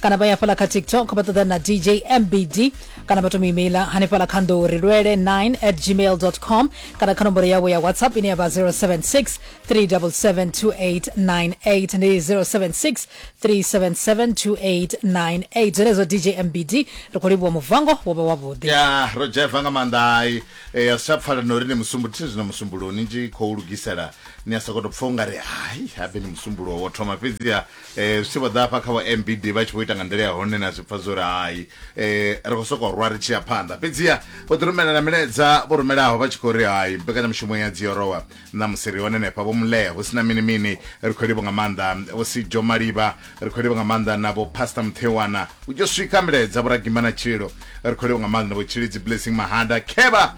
kana vha ya fhala kha tiktok vha ṱoḓa na dj mbd kana vha tomu imeila hanefhala kha nḓou ri lwele 9 at gmail com kana kha nomboro yavho ya whatsapp ine ya vha 076 3772898 ndi 076 3772898 zwenezwo dj mbd ri khou livhuwa muvango wo vha wavhuḓi ya ro dzheva nga maanḓa ai e, a si tsha pfala na uri ni musumbu thi zwino musumbulo ni tshi khou lugisela ni a sokoto pfa u nga ri hai habe ni musumbulo wo thoma fhedziha Zwi tshi vho ḓa hafha kha vho MBD, vha tshi vho ita nga nḓila ya hone na zwi pfa zwo ri hai, ri khou sokou rwa ri tshi ya phanḓa. Fhedziha vho ḓi rumela na milaedza vho rumelaho vha tshi khou ri hai, mbekanyamushumo ya Dziorowa ṋamusi ri hone henefha, Vho Mlee, hu si na mini mini, ri khou livho nga maanḓa, Vho Sijo Malivha, ri khou livho nga maanḓa na Vho Pastor Muthewana, hu tshi yo swika milaedza, Vho Ragimba na Tshililo, ri khou livho nga maanḓa na Vho Tshilidzi Blessing Mahada, Khevha,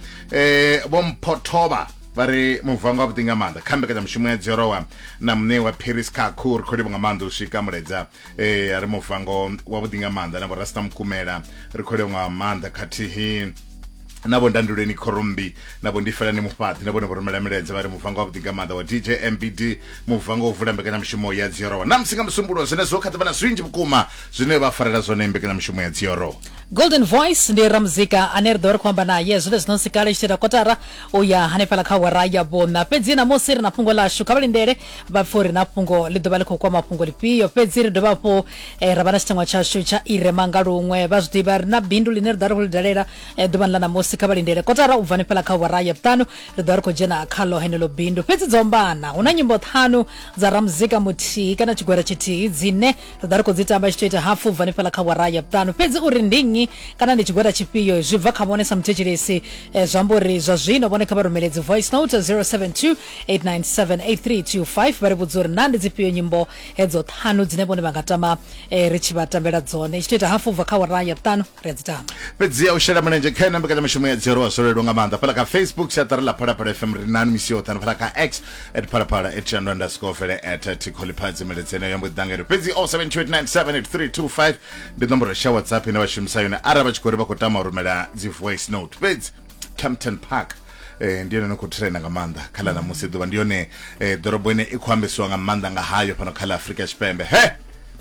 Vho Mpho Thovha. vha ri muvango wavhuḓi nga maanḓa kha mbekanyamushumo ya dzorowa na muṋe wa paris kakhu ri khou livha nga maanḓa u swika muledza e a ri muvango wavhuḓi nga maanḓa na vhorasta mukumela ri khou livha nga maanḓa khathihi na vho ndanduleni khorombi na vho ndifelani mufhaṱi na vhone vhorumela miledza vha ri muvango wavhuḓi nga maanḓa wa dj mbd muvango u vula mbekanyamushumo ya dziorowa na musi nga musumbulo zwenezwo kha ḓivha na zwinzhi vhukuma zwine vha farela zwone mbekanyamushumo ya dziorowa golden voice ndi ramuzika ane ri ḓo ri khou amba naye zwine zwino nsi kale tshi ita kotara u ya hanefhala kha awara ya vhuṋa fhedzi namusi ri na fhungo ḽashu kha vha lindele vha pfhe uri na fhungo ḽi ḓo vha ḽi khou kwama fhungo ḽifhio fhedzi ri dovha hafhu eh, ra vha na tshiteṅwa tshashu tsha irema nga luṅwe vha zwi ḓivha ri na bindu ḽine ri ḓo vha ri khou ḽi dalela eh, ḓuvhani ḽa namusi kha vha lindele kotara u bva hanefhala kha awara ya vhuṱanu ri ḓo vha ri khou dzhena khaḽo henelo bindu fhedzi dzo ombana hu na nyimbo ṱhanu dza ramuzika muthihi kana tshigwera tshithihi dzine ri ḓa ri khou dzi tamba tshi tou ita hapfu bva hanefhaḽa kha wara ya vhuṱanu fhedzi uri ndi nnyi kana ndi tshigwada tshifhio zwi bva kha vhone sa muthetshelesi eh, zwi amba uri zwa zwino vhone kha vha rumele dzi voice note 072 897 8325 vha ri vhudza uri naa ndi dzifhio nyimbo hedzo ṱhanu dzine vhone vha nga tama eh, ri tshi vha tambela dzone tshi tou ita hapfu bva kha wara ya vhuṱanu ri a dzi tama fhedzi a u shela mulenzhe kha ena mbekanyamushumo ya dzhielwa zwo leluwa nga maanḓa fhala kha facebook siaṱari ḽa phalaphala fm ri nani misi yoṱhe na fhala kha x at phalaphala at shandwa underscore vele at tikholiphadzi meledzeni yo mbo ḓi ḓangere fhedzi 0728978325 ndi nomboro sha whatsapp ine vha shumisa yone arali vha tshi khou ri vha khou tama u rumela dzi voice note fhedzi Kempton Park eh ndi yone no khou trenda nga maanḓa kha ḽa ṋamusi ḓuvha ndi yone eh ḓorobo ine i khou ambesiwa nga maanḓa nga hayo fhano kha ḽa Afrika Tshipembe he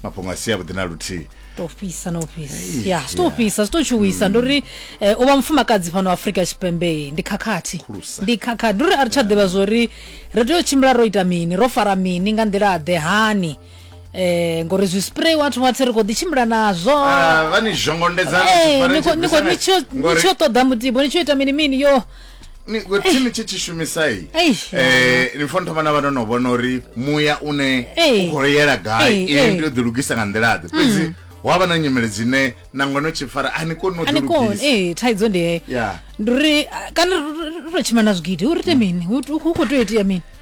mafhungo a si avhuḓi na luthihi to fhisa na u fhisa ya zwi to fhisa zwi to tshuwisa mm. ndi uri eh, u vha mufumakadzi fhano afrika tshipembe ndi khakhathi ndi khakhathi ndi uri a ri tsha ḓivha zwo ri ri tea u tshimbila ro ita mini ro fara mini nga nḓila ḓe hani eh ngori zwi spray wathu watsi ri kho ḓi tshimbila nazwo ah, vha ni zhongondedza eh, ni tsho ṱoḓa mutibo ni tsho ita mini mini yo thi ni tshi tshi shumisai eh, ni funa thoma na vha no no vhona uri muya une u khou yela gai iye ndi yo ḓilugisa nga nḓila ḓe fhedzi mm. wa vha na nyimele dzine nangwe no tshi fara a ni koni noee thaidzo ndi heyo ndi uri kana ri to tshima na zwigidi u rite mini u khou tea itea mini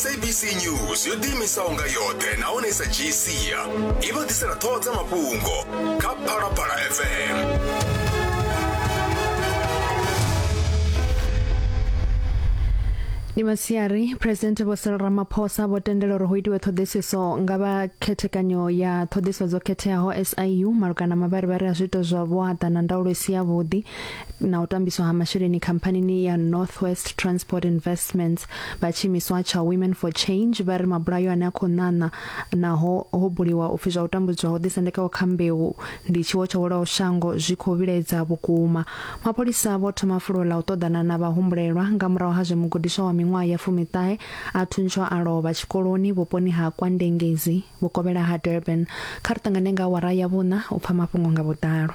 sabc news yo ḓiimisaho nga yoṱhe nahone i sa dzhii sia i vha ḓisela ṱhoho dza mafhungo kha phalaphala fm ndi masiari phuresidennde vho cyril ramaphosa vho tendela uri hu itiwe ṱhoḓisiso nga vha khethekanyo ya ṱhoḓisiso dzo khetheaho siu malugana na mavharivhari a zwiito zwa vhuaḓa na ndaulo i si yavhuḓi na u tambiswa ha masheleni khamphanini ya northwest transport investments vha tshiimiswa tsha women for change vha ri mabulayo ane a khou ṋaṋa naho ho buliwa upfi zwa u tambudzwa ho ḓisendekaho kha mbeu ndi tshiwo tsho welaho shango zwi khou vhilaedza vhukuma mapholisa vho thoma fulo ḽa u ṱoḓana na vhahumbulelwa nga murahu ha zwe mugudiswa wa miṅwaha ya fumiṱahe a thuntswa a lovha tshikoloni vhuponi ha kwandengezi vhukovhela ha durban kha ri ṱangane nga awara ya vhuṋa u pfa mafhungo nga vhuḓalo